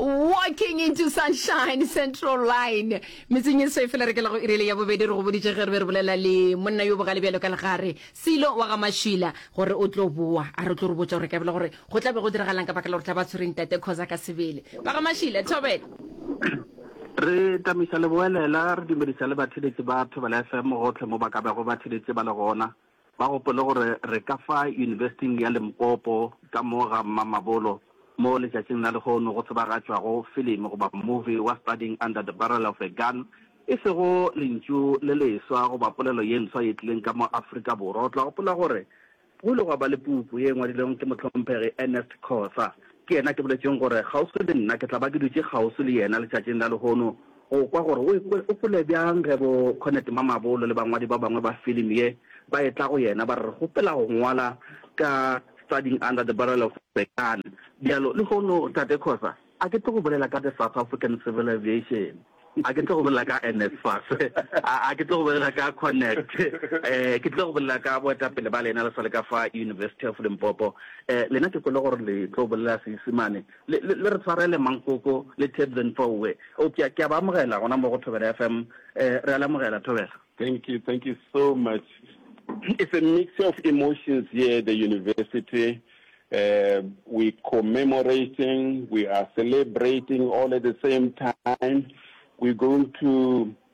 walking into sunshine central line metseng e se fela re ke la go irele ya bobedi re go boditše ge re be re bolela le monna yo bogale bjalo ka legare selo wa ga mašila gore o tlo boa a re tlo re botsa gore ka bela gore go tla be go diragalang ka baka la gore tla ba tshwereng tate cause ka sebele ba ga mašila thobela re tamisa leboelela re dumedisa le batheletsi ba thobela fm gotlhe mo ba ka bego ba theletše ba le gona Ba gopole gore re ka fa Yunibesiting ya Limpopo ka mo ga Mmamabolo mo letšatšing la lehono go tsebagatšwago filimi goba movie wa Studying Under the Barrel of a Gun, e sego lentšu le leswa goba polelo ye ntswa ye tlileng ka mo Afrika Borwa. O tla gopola gore go ile gwa ba le puku ye ngwadilwego ke mohlomphegi Ernest Khosa. Ke yena ke boletšeng gore kgauswi le nna ke tla ba ke dutše kgauswi le yena letšatšing la lehono. Go kwa gore o ekwe o kwele bjang ge bo Cornet Mamabolo le bangwadi ba bangwe ba film ye ba etla go yena ba re re kgopela go ngwala ka Studying Under the Barrel of the Gun. Bjalo lehono Tate Khoza, a ke tlo go bolela ka the South African Civil Aviation, a ke tlo go bolela ka NSFAS, a ke tlo go bolela ka Connect, ke tlo go bolela ka boetapele ba lena le sa le ka fa University of Limpopo. Lena ke kwele gore le tlo bolela Seisemane. Le, le, le re tshwarele Mankoko le Tebzen Fouwe. O, ke a, ke a ba amogela gona mo go Thobela FM. Eh, re a le amogela, Thobela. Thank you, thank you so much. It's a mixture of emotions here at the university. Uh, we commemorating, we are celebrating all at the same time. We're going to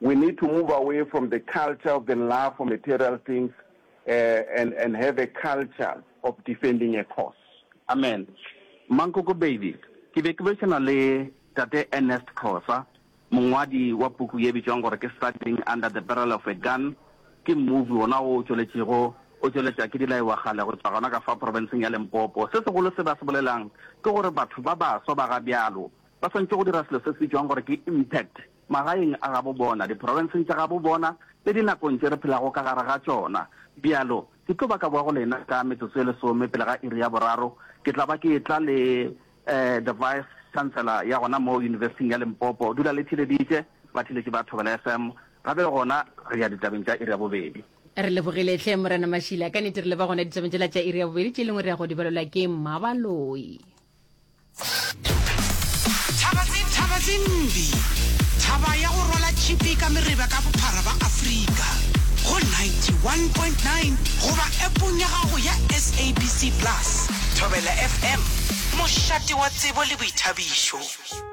We need to move away from the culture of the love for material things uh, and, and have a culture of defending a cause. Amen. Mankoko baby, ke be ke bešana le tate Ernest Khosa, mongwadi wa puku ye bitšwang gore ke Struggling Under the Barrel of a Gun, ke movie wona o tšweletšego o tšweletša ke dilaiwa gale go tšwa gona ka fa provinceng ya lempopo se segolo se ba se bolelang ke gore batho ba baswa ba ga bjalo ba swantšwe go dira selo se se bitšwang gore ke impact magaeng a gabo bona, diprofenseng tša gabo bona le dinakong tše re phelago ka gare ga tšona. Bjalo, ke tlo ba ka boa go lena ka metsotso e lesome pele ga iri ya boraro. Ke tla ba ke e-tla le eh, the Vice Chancellor ya gona moo Yunibesithing ya Limpopo. Dula le theleditše, batheletši ba Thobela FM. Gape gona re ya ditabeng tša iri ya bobedi. Re lebogile hle Morena Mashila. Ka nete re leba gona ditabeng tšela tša iri ya bobedi, tše lengwe re ya go di balelwa ke Mmabaloi. Thaba tse mbi. Thaba ya go rwala tšhipi ka mereba ka bophara ba Afrika go 91.9 goba appong ya gago ya SABC Plus. Thobela FM, mošate wa tsebo le boithabišo.